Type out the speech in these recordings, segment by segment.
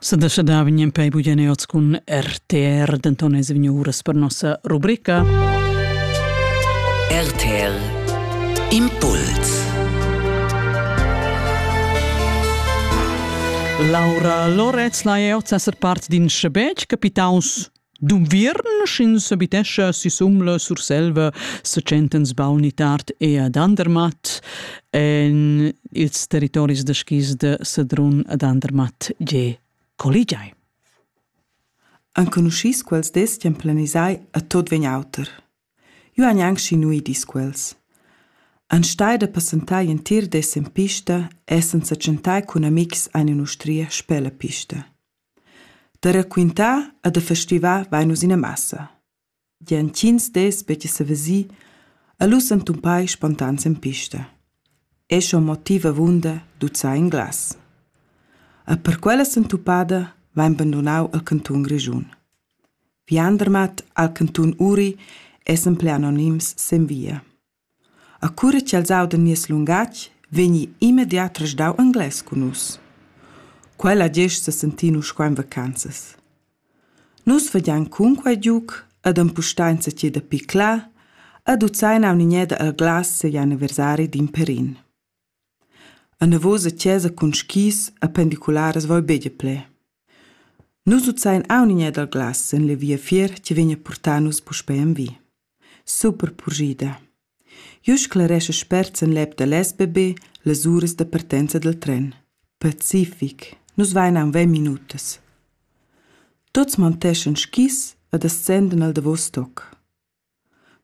Sadascha da vegnem pei bugene oz cun RTR, denton es vegnu uras per nossa rubrica. RTR Impuls Laura Loretz, la è oz esser part d'in schebetg capitaus D'unviern, sch'ins abitescha sisum la Surselva, sa tschentan sbauni tard e ad Andermatt en ils territoris da skis da Sedrun ad Andermatt gie colligiai. Enconuschis quels destian planisai a tot vegn auter. Io han anche schinui dis quels. An stai da passentai entir des in pista e senza tschentai cun amics ein in ustria spella pista. Da raquintar e da festivar vein nus ina massa. Gia intgins dis veggi sevesì e lu s'entumpai spontan sin pista. Ei schon motiv avunda duzzar in glas. E per quella s'entupada vein bandunau il cantun Grischun. Viandermat al cantun Uri es en pli anonims sin via. A cura ch'els audan nies lungatg, vegni immediat resdau englais cun nus. Quella gest sesentin uss qua en vacanzas. Nus vegian cunquei giug ed empustar enzatgei da piclar ed uzein aunc in eda el glas segl anniversari d'in pèrin. Anavos a chasa cun skis e pendicularas vaibeglia bler. Nus uzzain aun in dal glas en la viafier chi vegna purtà nus puspei envi. Super purschida. Jeu sclaresch spert sen l'ep da l'SBB las uras da partenza dal tren. Pacific. Nus vain aun ventg minutas. Tuts monteschan skis ed ascendan al davos toc.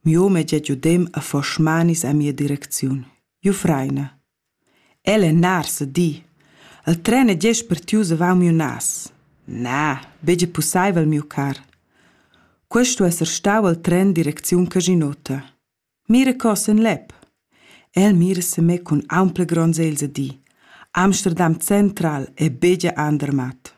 Miu meglier giudem ha fos smanis a mia direcziun. Jufreina. El è nars a di. El tren è gest partius avau miu nas. Na, betg pussaivel, miu car. Questo esser stau al tren direcziun Casinota. Mira cos en lep. El mira se me cun ampla gronza els a di. Amsterdam Central è begia andermat.